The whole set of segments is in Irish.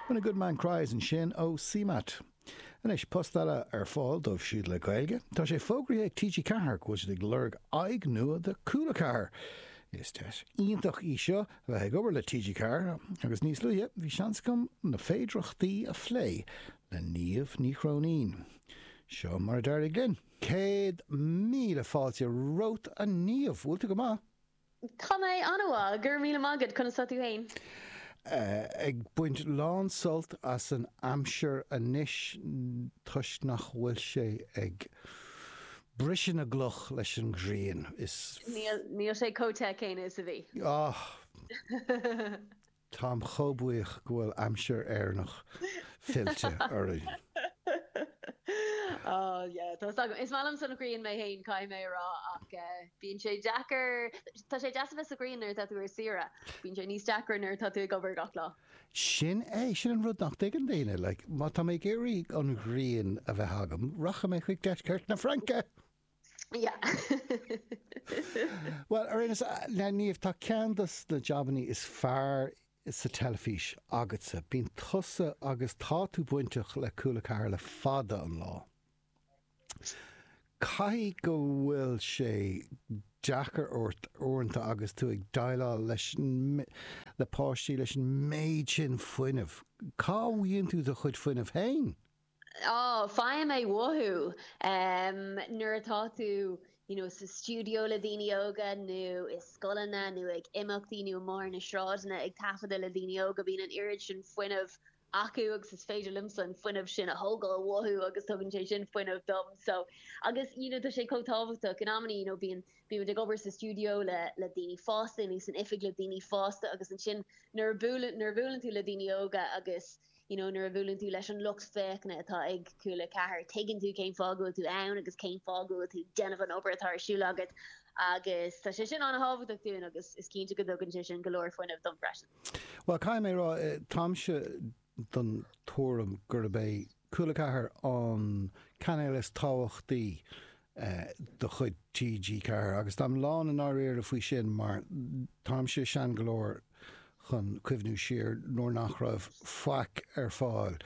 When a good man cries ansin ó CMAT. Anois, post eile ar fáil dóibh siúd le Gaeilge. Tá sé fógraithe ag TG4 go bhfuil siad ag lorg aghaidh nua do Cúla 4! Is deis iontach í seo a bheith ag obair le TG4 agus níos luaithe bhí seans agam na féidireachtaí a phlé le Niamh Ní Chróinín. Seo mar a d'éirigh linn. Céad míle fáilte romhat a Niamh! Bhfuil tú go maith? Tá mé an-mhaith, go raibh míle maith agat, conas tá tú féin? Ag baint lán-sult as an aimsir anois toisc nach bhfuil sé ag briseadh na gcloch leis an ghrian. Níl sé chomh te céanna is a bhí. Táim chomh buíoch go bhfuil aimsir Éireannach fillte orainn. Ohh yeah, tá 's agam. Is maith liomsa an ghrian mé fhéin, caithfidh mé a rá, ach bíonn sé deacair, tá sé deas a bheith sa ghrian nuair atá tú ar saoire, bíonn sé níos deacra nuair atá tú ag obair gach lá. Sin é, sin an rud nach dtuigeann daoine, like, má tá mé ag iarraidh an ghrian a bheith agam, rachaidh mé chuig deisceart na Fraince! Bhuel, i ndáiríre, a Niamh, tá ceann de na jabannaí is fearr sa teilifís agatsa. Bíonn tusa agus tá tú bainteach le Cúla 4 le fada an lá. Caithfidh go bhfuil sé deacair ort uaireanta agus tú ag déileáil leis an, le páistí, leis an méid sin fuinnimh. Cá bhfaigheann tú do chuid fuinnimh féin? Á, faighim é uathu! Nuair atá tú you know sa stiúideo le daoine óga nó i scoileanna nó ag imeachtaí nó amuigh ar na sráideanna ag taifeadadh le daoine óga, bíonn an oiread sin fuinnimh acu agus is féidir liomsa an fuinneamh sin a thógáil uathu agus tugann sé sin fuinneamh dom so agus you know tá sé chomh tábhachtach, in amannaí you know bíonn bíonn muid ag obair sa stiúideo le le daoine fásta nó san oifig le daoine fásta agus ansin nuair a buaileann nuair a bhuaileann tú le daoine óga agus you know nuair a bhuaileann tú leis an lucht féachana atá ag Cúla 4, tuigeann tú cén fáth go bhfuil tú ann agus cén fáth go bhfuil tú ag déanamh an obair atá ar siúl agat agus tá sé sin an-tábhachtach dúinn agus is cinnte go dtugann sé sin go leor fuinnimh dom freisin. Bhuel, caithfidh mé a rá, táimse den tuairim gurb é Cúla 4 an cainéal is tábhachtaí de chuid TG4 agus táim lán i ndáiríre faoi sin mar táimse sean go leor chun cuimhniú siar nuair nach raibh faic ar fáil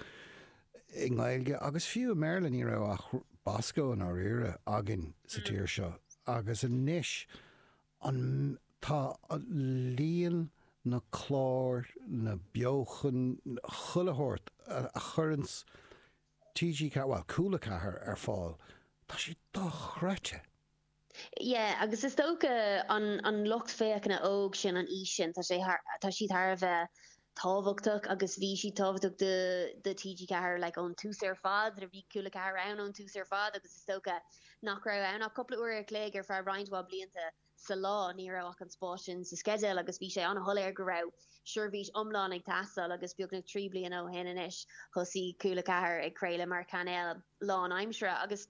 i nGaeilge agus fiú i mBéarla, ní raibh ach Bosco, i ndáiríre, againn sa tír seo agus anois tá líon na gclár, na beochan, chuile shórt a chuireanns. TG4, bhuel, Cúla 4 ar fáil, tá sé dochreidte! Yeah, agus is dócha an an lucht féachana óg sin, an aois sin, tá siad thar a bheith tábhachtach agus bhí siad tábhachtach do do TG4 like ón tús ar fad, bhí Cúla 4 ann ón tús ar fad agus is dócha nach raibh ann ach cúpla uair a chloig ar feadh roinnt mhaith blianta. sa lá, ní raibh ach an spás sin sa sceideal agus bhí sé an-shoiléir go raibh seirbhís iomlán ag teastáil agus beagnach trí bliana ó shin anois thosaigh Cúla 4 ag craoladh mar chainéal lán-aimsire agus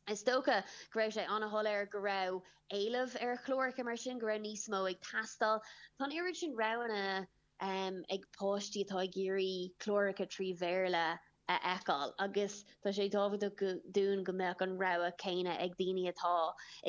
is dócha go raibh sé an-shoiléir go raibh éileamh ar chláracha mar sin, go raibh níos mó ag teastáil. Tá an oiread sin roghanna. em, ag páistí atá ag iarraidh cláracha trí Bhéarla a fheiceáil agus tá sé tábhachtach dúinn go mbeadh an rogha céanna ag daoine atá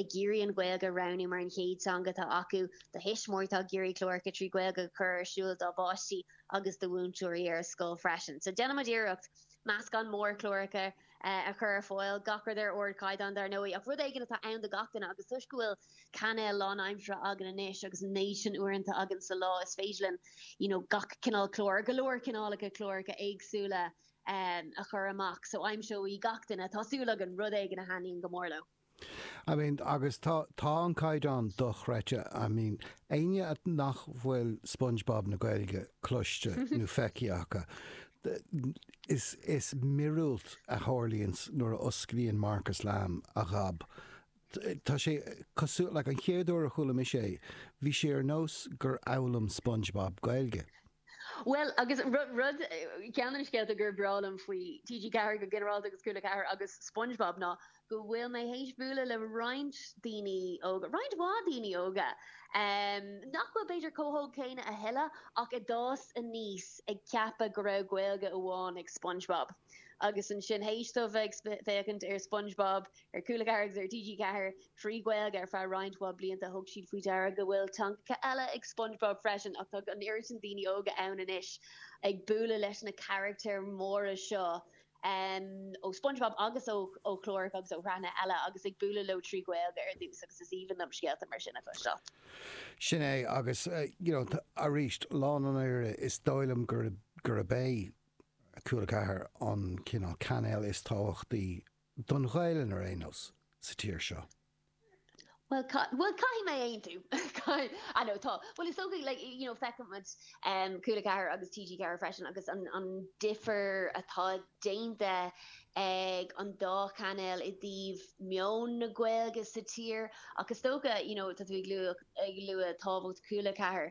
ag iarraidh an Ghaeilge a roghnú mar an chéad teanga atá acu, do thuismitheoirí atá ag iarraidh cláracha trí Ghaeilge a chur ar siúl dá bpáistí agus do mhúinteoirí ar scoil freisin. So déanann muid iarracht meascán mór cláracha a chur ar fáil, gach rud ar ardchaighdeán dar ndóigh ach rud éigin atá ann do gach duine agus toisc go bhfuil cainéal lánaimseartha againn anois agus na huaireanta sin againn sa lá is féidir linn you know gach cineál cláir, go leor cineálacha cláracha éagsúla ehm a chur amach so aimseoidh gach duine, tá súil againn, rud éigin a thaitníonn go mór leo. I mean agus tá tá an caighdeán dochreidte I mean éinne nach bhfuil Spongebob na Gaeilge cloiste nó feicthe acu is míorúilt a tharlaíonns nuair a osclaíonn Marcus Lamb a ghob Tá sé cosúil le, an chéad uair a chuala mise é, bhí sé ar nós gur fhoghlaim Spongebob Gaeilge. Bhuel, agus rud, ceann de na scéalta gur breá liom faoi TG4 go ginearálta agus Cúla 4 agus Spongebob ná go bhfuil mé théis bualadh le roinnt daoine óga, roinnt mhaith daoine óga, nach bhfuil b'fhéidir chomh hóg céanna a thuilleadh ach a d'fhás aníos ag ceapadh go raibh Gaeilge amháin ag Spongebob agus ansin théis dóibh bheith ag féachaint ar Spongebob Ar Cúla 4 agus ar TG4, trí Ghaeilge, ar feadh roinnt mhaith blianta. Thug siad faoi deara go bhfuil teangacha eile ag Spongebob freisin ach tá an oiread sin daoine óga ann anois ag bualadh leis na carachtair mhóra seo ó Spongebob agus ó chláracha agus ó shraitheanna eile agus ag bualadh leo trí Ghaeilge ar dtús agus is aoibhinn liom scéalta mar sin a chloisteáil. Sin é agus you know arís lom na fírinne is dóigh liom gurb é Cúla 4 an cineál cainéal is tábhachtaí don Ghaelainn ar aon nós, sa tír seo. Bhuel, bhuel, caithfidh mé aontú. I know, tá. Bhuel, is dócha, like, you know, feiceann muid Cúla 4 agus TG4 freisin agus an difear atá déanta ag an dá chainéal i dtaobh meon na Gaeilge sa tír ach is dócha, you know, tá tú ag lua tábhacht Chúla 4,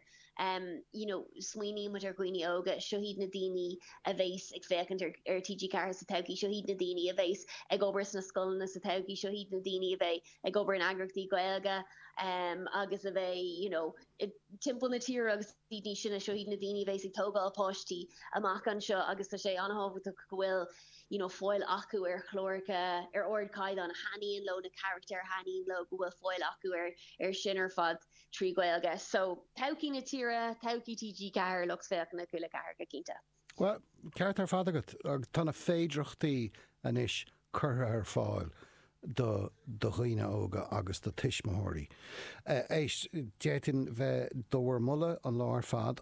you know smaoiníonn muid ar dhaoine óga, seo iad na daoine a bheas ag féachaint ar ar TG4 sa todhchaí, seo iad na daoine a bheas ag obair sna scoileanna sa todhchaí, seo iad na daoine a bheidh ag obair in eagraíochtaí Gaeilge em agus a bheidh you know timpeall na tíre agus iad níos sine, seo iad na daoine a bheas ag tógáil páistí amach anseo agus tá sé an-tábhachtach go bhfuil you know fáil acu ar chláracha ar ardchaighdeán a thaitníonn leo na carachtair a thaitníonn leo go bhfuil fáil acu ar ar sin ar fad. trí Ghaeilge. So, todhchaí na tíre, todhchaí TG4, lucht féachana Cúla 4 go cinnte. Bhuel, ceart ar fad agat. Tá na féidireachtaí anois curtha ar fáil do do dhaoine óga agus do tuismitheoirí. Éist, d'fhéadfainn bheith do bhur moladh an lá ar fad.